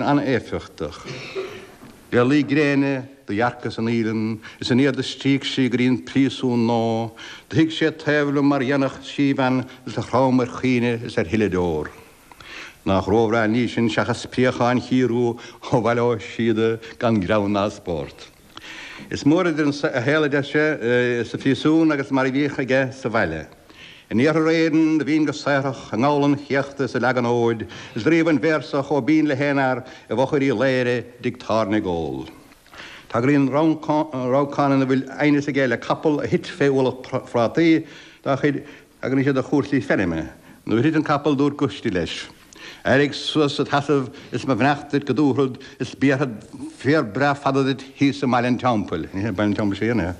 an-éifeachtach. Le luí gréine do dhearcas an fhaoileann is aniar do stríoc sí go dtí an príosún nó do shuigh sé taobh liom mar dhéanfadh síbhean is do chrom ar chaoineadh is ar shileadh deor. Nach róbhreá an ní sin seachas préacháin Chiarraí ó Bhaile Átha Síoda gan greann ná spórt. Is mór idir an saol a d'fhaigheadh sé sa phríosún agus mar a bhíodh aige sa bhaile. In iarthar Éireann a bhínn go saothrach, i ngabhal an chéachta is ag leagan fóid is scríobhainn véarsa chomh binn le haon fhear i bhfochair Uí Laoghaire i dtigh tábhairne ag ól. Tagraíonn rabhcán ina bhfuil aighneas aige le capall a thit fé ualach prátaí tagraíonn sé do chúrsaí feirme. Nuair a thit an capall dúirt Guistí leis. Éirigh suas id sheasamh is mo bheannacht duit go dtabharfad is béarfad féar breá fada duit thíos i mBaile an Teampaill. Ní hé Baile an Teampaill seo fhéin é,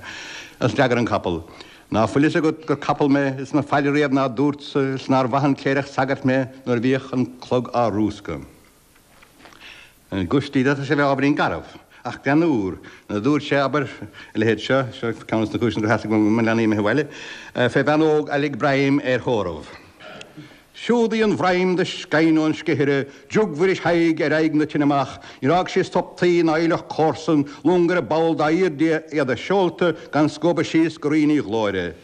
a d'fhreagair an capall. Ná fuil fhios agat gur capall mé is mo phaidir riamh ná dúrtsa is nár mhaith an cléireach sagairt mé nuair a bhíodh an clog á rúscadh. Guistí, d'fhéadfadh sé a bheith ábhairín garbh. Ach bean úr nó dúirt sé, abair, a leithéid seo, seo ceann de na cúiseanna gur theastaigh uaim mo leanaí a imithe abhaile, fé bhean óg a lig broim ar thórramh. Siúd í an bhroim do sceinn ón scithaire, i dtigh Mhuiris Thaidhg ar aghaidh na tine amach, níor fhág sí sop tuí ná aoileach comharsan, long ar aon bhall dá aoirde, iad a seolta gan scuabadh síos go Rinn Uí Ghlóire.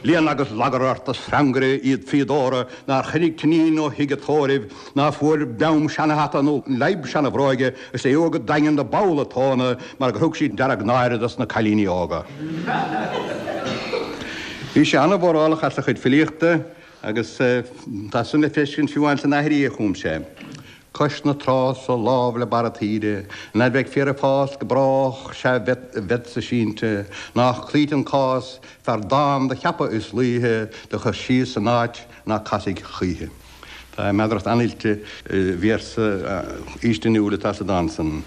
Léan agus lagar ort, a shreangaire liath fíodóra nár choinnigh t'iníon ó thigh an tórraimh, Ná fuair beam seana hata nó leadhb seana bhróige is é a fhuáil go daingean do pholl a tóna mar gur thug sí deargnáire dos na cailíní óga. Bhí sé an-mhórálach as a chuid filíochta agus tá san le feiscint fiú ann san aithrí a chum sé, Cois na trá so lámh le barra taoide, ná beidh féar ag fás go brách sea bheadsa sínte, nách cloíte an cás, fear dán do cheapadh is laoithe do chur síos san áit ná casfaidh choíche. Tá meadaracht an-oilte i véarsa faoistiniúil atá sa dán san,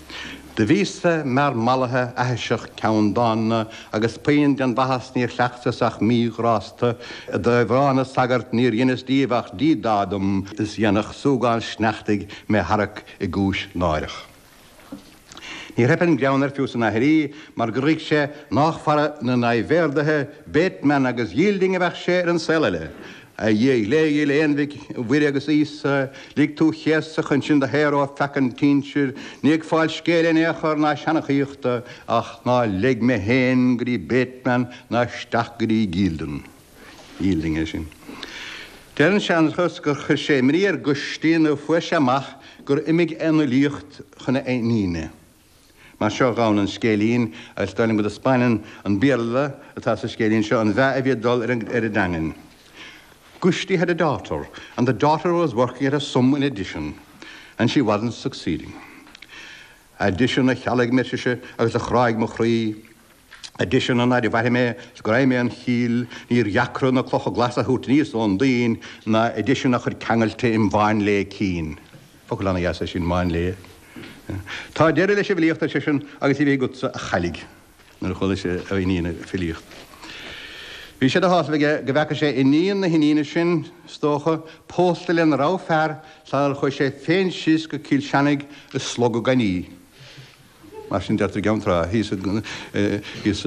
'Do bhíos-sa mear mallaithe aithiseach ceanndána, agus puinn den mhaitheas níor chleachtas ach mí-ghrásta, i dtaobh rá na sagart níor dheineas díobh ach díodá dom, is dhéanfadh súgán sneachtaidh mé tharrac i gcúis náireach. Níor theip an greann air fiú san aithrí mar gur thuig sé nách fara na n-aidhbhéardaithe, Bateman agus Yielding, a bheadh sé ar an saol eile. A Dhia ghléigil, Aon Mhic Mhuire agus Íosa, lig tú chéasadh chun sinn do shaoradh ó pheaca an tsinsir, ní ag fáil scéil in aon chor ná seanachaíochta, ach ná leig mé féin go dtí Bateman ná isteach go dtí Yielding. Fhílding é sin. Deir an seanchas gur chuir sé imní ar Goistí nuair fuair sé amach gur imigh an fhilíocht chun a iníne. Mar seo a ghabhann an scéilín, agus dar liom go dtaispeáineann an Béarla atá sa scéilín seo an meath a bhí ag dul ar an teangain. Goistí had a daughter, and the daughter was working at a sum in addition, and she wasn't succeeding. Addition a chealg mé ar sise agus a chráigh mo chroí. Addition an áirimh braithim é, is greim é im chlí, níor dheacra na clocha glasa a thabhairt aníos ón dtoinn ná addition a chur ceangailte im mháinlia cinn. Focal an-dheas é sin, máinlia. Tá deireadh leis an bhfilíocht, ar seisean, agus í bheith agatsa, a chailligh, nuair a chuala sé a iníon ag filíocht. Bhí sé de shásamh aige go bhfeaca sé iníon na hiníne sin, is dócha, pósta lena rogha fear, sar chuaigh sé féin síos go Cill Seanaigh ag slogadh gainí. Mar sin, deirtear i gceann trá thíos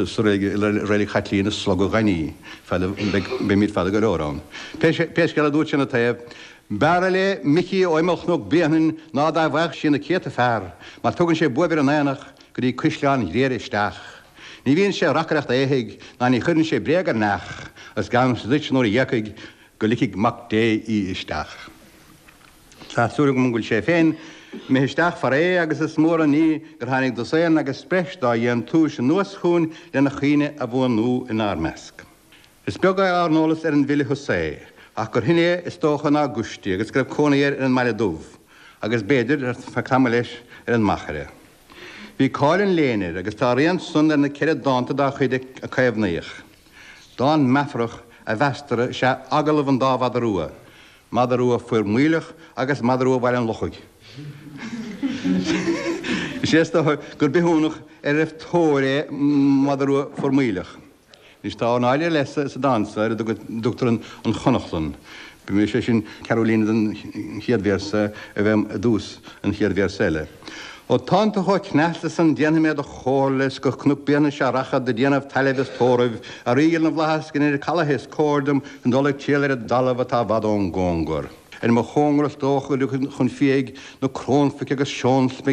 sa reilig, i Reilig Chaitlíona ag slogadh gainí, Fada, beimid fada go leor ann. Pé scéal é dúirt sé ina taobh, B'fhearra léi Micí ó imeall Chnoc Bréanainn ná dá bhfaigheadh sí na céadta fear, mar tugann sé buaibh ar an aonach go dtí Caisleán Ghriaire isteach. Ní bhíonn sé ag reacaireacht éithigh ná ní chuireann sé bréag ar neach, agus geallaimse duit nuair a dh'éagfaidh go ligfidh Mac Dé í isteach. Tá súil agam go bhfuil sé féin imithe isteach farae agus is mór an ní gur tháinig dosaen agus breis dá dhéantúis anuas chugainn lena chuimhne a bhuanú inár measc. Is beag ár n-eolas ar an bhfile Husae ach gur shine é, is dócha, ná Goistí agus go raibh cónaí air ar an mBaile Dubh agus, b'fhéidir, ar feadh tamaill leis, ar an Machaire. Bhí cáil an léinn air agus tá a rian san ar na ceithre dánta dá chuid a caomhnaíodh. Dán meafarach a mheastar is ea 'Agallamh an Dá Mhada Rua', Mada rua Formaoileach agus mada rua Bhaile an Lochaigh. Is é is dócha gur bithiúnach ar a raibh tóir é mada rua Formaoileach. Anois tá ornáid leis sa dán so ar a dtugtar An Chonachlann. B'fhéidir, sé sin, ceathrú líne den chéad véarsa a bheith i dtús an chéad véarsa eile. Ó tánn tú chomh cneasta san déanfaidh mé do chomhairle is go Cnoc Bréanainn sea rachad do déanamh tailimh is tórraimh a Rí ghil na bhflaitheas go ndeir Caladh is cóir dom dul ag triall ar an dtalamh atá i bhfad ón gcóngar. Ar mo chóngar is dócha go dtiocfaidh chun fiaigh na crónphoic agus seónsmig